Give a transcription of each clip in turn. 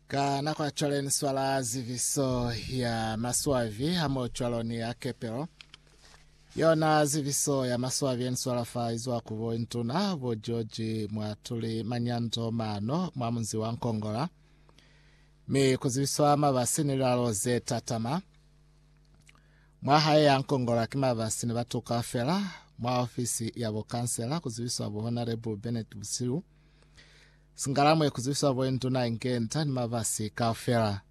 Ka nako ya cwale ni swala ziviso ya maswabi ha mo cwalo ni ya kepelo. Yona ziviso ya maswabi ya ni swala fa izwa ku bo ntuna bo George mwa tuli manyando mano mwa munzi wa Nkongola. Mi ku zibiswa mabasi ni lilalo ze tatama. Mwa hae ya Nkongola ki mabasi ni batu kaufela. Mwa ofisi ya bo kansela ku zibiswa bo Honorable Bennett Busilu. Singalamwe kuzibiswa bointuna Nkenta ni mabasi kaufela.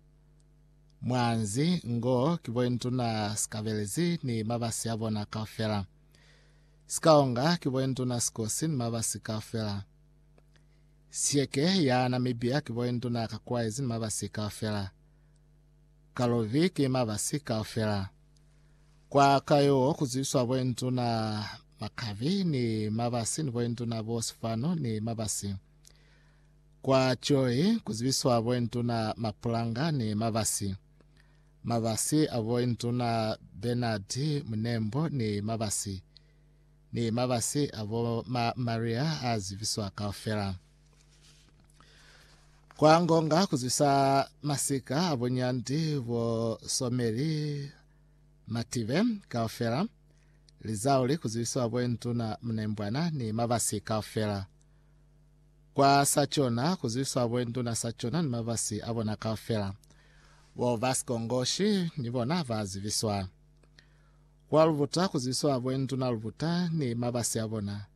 Mwanzi ngo ki bointuna Sikabelezi ni mabasi abona kaufela. Sikaonga ki bointuna Sikosi ni mabasi kaufela. Siyeke ya Namibia ki bointuna Kakuwaezi ni mabasi kaufela. Kalovi ki mabasi kaufela. Kwa ka yo ku zwiswa boinduna Makavi ni Mabasi ni boinduna bo Sifano ni Mabasi. Kwa Joyi ku zwiswa boinduna Mapulanga ni Mabasi. Mabasi a boinduna Bernard Munembo ni Mabasi. Ni Mabasi a bo ma Maria a zibiswa kaufela. Kwa ngonga kuzwisa masika a bunyandi bo someli mative kaufela, lizauli kuzwisiwa bointuna mnembwana ni mabasi kaufela. Kwa sa chona kuzwisiwa bointuna sa chona ni mabasi a bona kaufela. Bo basikongoshi ni bona ba zibiswa. Kwa lubuta kuzwisiwa bointuna lubuta ni mabasi a bona.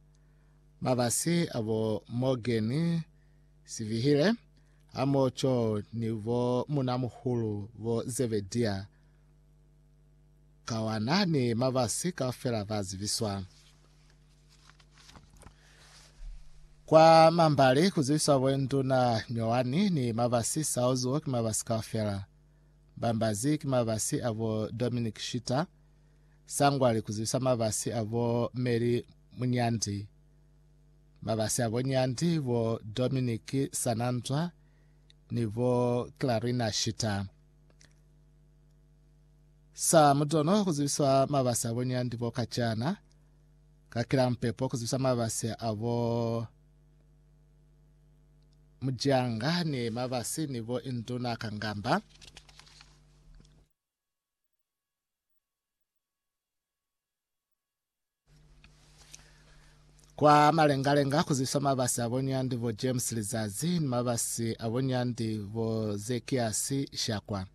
Mabasi a bo Morgan Sivihile hamoho ni bo munamuhulu bo Zebedia Kawana ni mabasi kaufela ba zibiswa kwa mambali ku zibiswa bo nduna Nyowani ni mabasi Saozuo ki mabasi kaufela. Bambazi ki mabasi a bo Dominic Shita Sangwali kuzibisa mabasi a bo Mary Munyandi, mabasi a bo Nyandi, bo Dominic Sananzwa ni bo Clarina Shita. Sa mutono kuzibiswa mabasi a bo Nyandi bo Kacana, ka kila mupepo kuzibisa mabasi a bo Mujanga ni mabasi ni bo Induna Kangamba. Kwa malengalenga ku zibiswa mabasi a bonyandi bo James Lizazi ni mabasi a bonyandi bo Zekiasi Shakwa.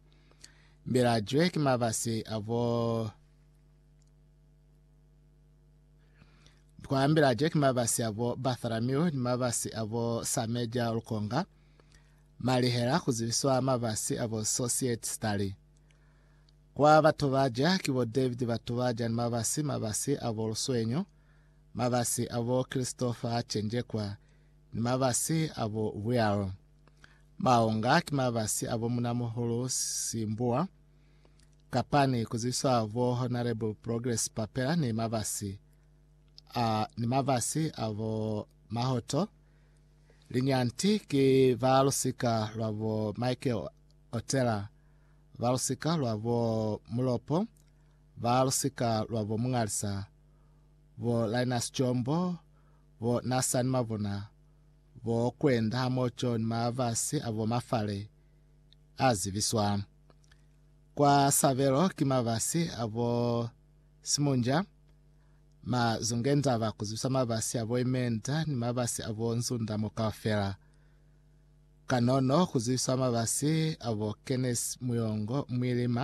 Mbilajwe ki mabasi a bo kwa mbilajwe ki mabasi a bo Bartholomew ni mabasi a bo Sameja Lukonga. Malihela ku zibiswa mabasi a bo Society Stari. Kwa batu ba ja, ki bo David batu ba ja ni mabasi, mabasi a bo Luswenyo, mabasi a bo Christopher a cenjekwa, ni mabasi a bo Real. Maonga ki mabasi a bo Munamuhulu Simbuwa, kapani ku zwiswa bo Honourable Progress Papela ni mabasi a, ni mabasi a bo Mahoto, Linyanti ki ba lusika lwa bo Michael otela, ba lusika lwa bo Mulopo, ba lusika lwa bo Mungalisa, bo Linus Jombo, bo Nasani Mabona, bo Kwenda hamoco ni mabasi a bo Mafale a zibiswa. Kwa sabelo ki mabasi a bo Simunja, ma Zungendaba ku zibisa mabasi a bo Imenda ni mabasi a bo Nzunda mo kaufela. Kanono ku zibiswa mabasi a bo Kenneth Muyongo Mwilima.